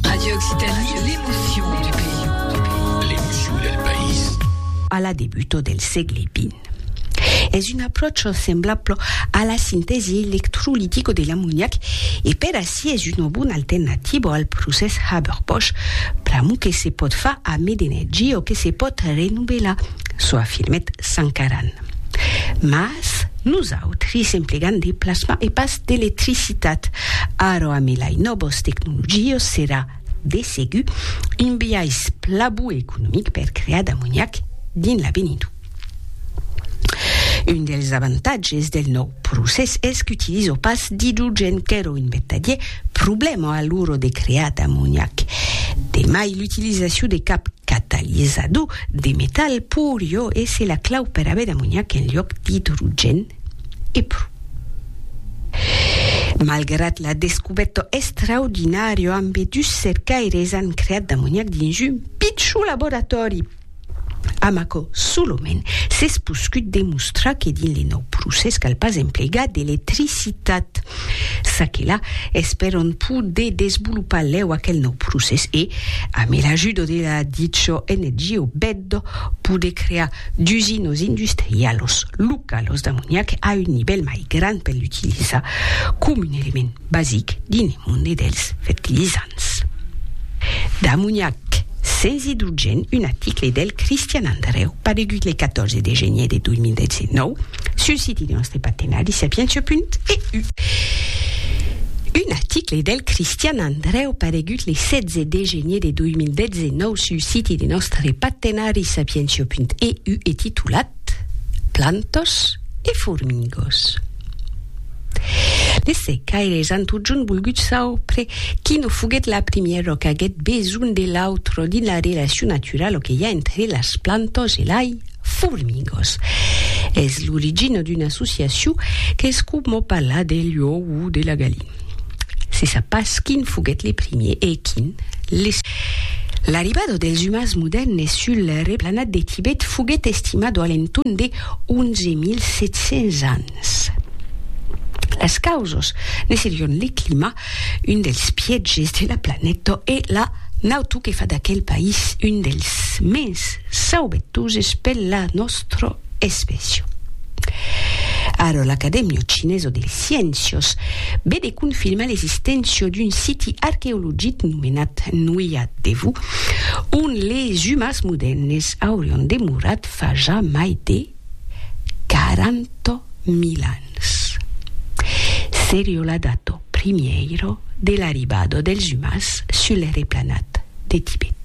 Radio Occitanie, l'emotion du pays. L'emotion del país. A la debuto del sègle vint, es un apròche semblable a la sintèsi electrolitico de l'amoniac e per ací es una bona alternativa al procès Haber-Bosch pr'amor que se pòt far a mèd energia o que se pòt renovelar, çò afirmèt Sankaran. Mas nosautri s'emplegam de plasma e pas d'electricitat. Ara amé lai nòbos tecnologios serà de segur un biais pla bu economic per crear d'amoniac dins l'avenidor. Un dels avantatges del nòu procès es qu'utilizo pas d'idrogèn qu'èro un vertadier problèma a l'ora de crear d'amoniac. De mai l'utilizacion de cap catalizador De metal pur jo esse la clau per aver d'amoniac en lloc d'idrogèn e pro. Malgrat la descubèta estraordinària ambe dus cercaires an creat d'amoniac dins un pichon laboratòri amb aquò solament s'es poscut demostrar que dins le nòu procès cal pas emplegar d'electricitat. Çaquelà, espèron poder desvolopar lèu aquel nòu procès e, amé l'ajudo de la dicho NGO Beddo, poder crear d'usinos industrialos localos d'amoniac a un nivèl mai grand per l'utilizar com un element basic dins le monde dels fertilizants d'amoniac sens idrogèn, un article del Cristian Andrèu paregut le 14 de genièr de 2019. Sul siti de nòstre partenari sapientia.eu. Un article del Cristian Andrèu paregut le 16 de genier de 2019 sul siti de nòstre partenari sapientia.eu e titulat Plantas e formigos. Les cercaires an totjorn volgut saupre quina foguèt la primièra qu'aguèt besonh de l'autra dins la relacion naturala que i a entre las plantas e l'ai, Formigos. Es l'origina d'una associacion qu'es coma parlar de l'uò o de la galina. Se sap pas quin foguèt le primier e quin le segond. L'arribada dels umans modèrnes sul replanat de Tibet foguèt estimada a l'entorn de 11.700 ans. Las causas ne serion le clima, Un dels pièges de la planeta e la nato que fa d'aquel país un dels mens saubetoses per la nòstra espècia. Ara l'Acadèmia Chinesa de Sciéncias ve de confirmar l'existéncia d'un siti arqueologic nomenat Nuia Devu, ont les umans modèrnes aurián demorat fa ja mai de quaranta mil ans. Serio la dato primièiro de l'arribada dels umans sul replanat de Tibet.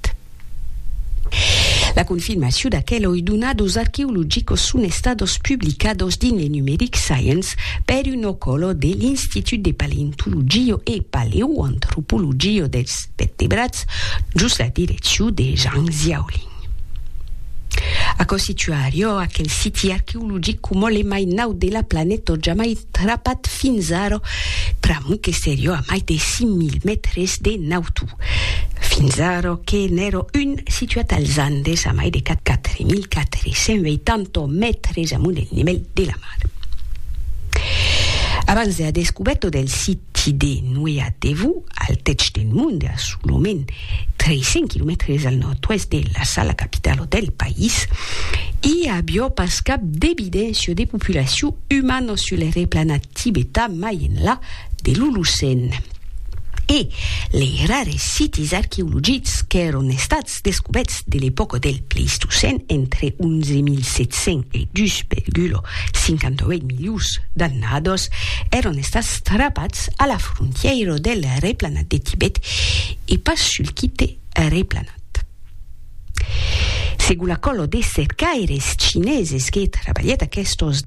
La confirmaciu d'aqueloi duna dos arqueologicos son estados publicados dins le numeric Science per un ocolo de l'Institut de Paleontologia e Paleoantropologia dels Vertebrats jos la direcciu de Zhang Xiaolin. Aquò situa Ariò, aquel siti arqueologic coma le mai naut de la planeta jamai trapat fins ara, pr'amor que serió a mai de 5.000 mètres de nautu. Fins ara que n'èra un situat als Andes a mai de 4.480 mètres amunt del nivèl de la mar. Abans de la descubèrta del siti de Nuea Devu, al tètz del monde, a solament 300 quilomètres al nòrd-oèst de Lassala, capitala del país, i avió pas cap d'evidéncia de populacion umana sul replanat tibetan mai enlà de l'Olocèn. E lei rares sitis arqueologics qu'èron estats descobèts de l'epòca del Pleistocèn entre 11.700 e 2,58 milions d'annadas èron estats frapats a la frontièira del replanat de Tibet e pas sul quite replanat. Segon la còla de cercaires chineses que trabalhèt aquestos.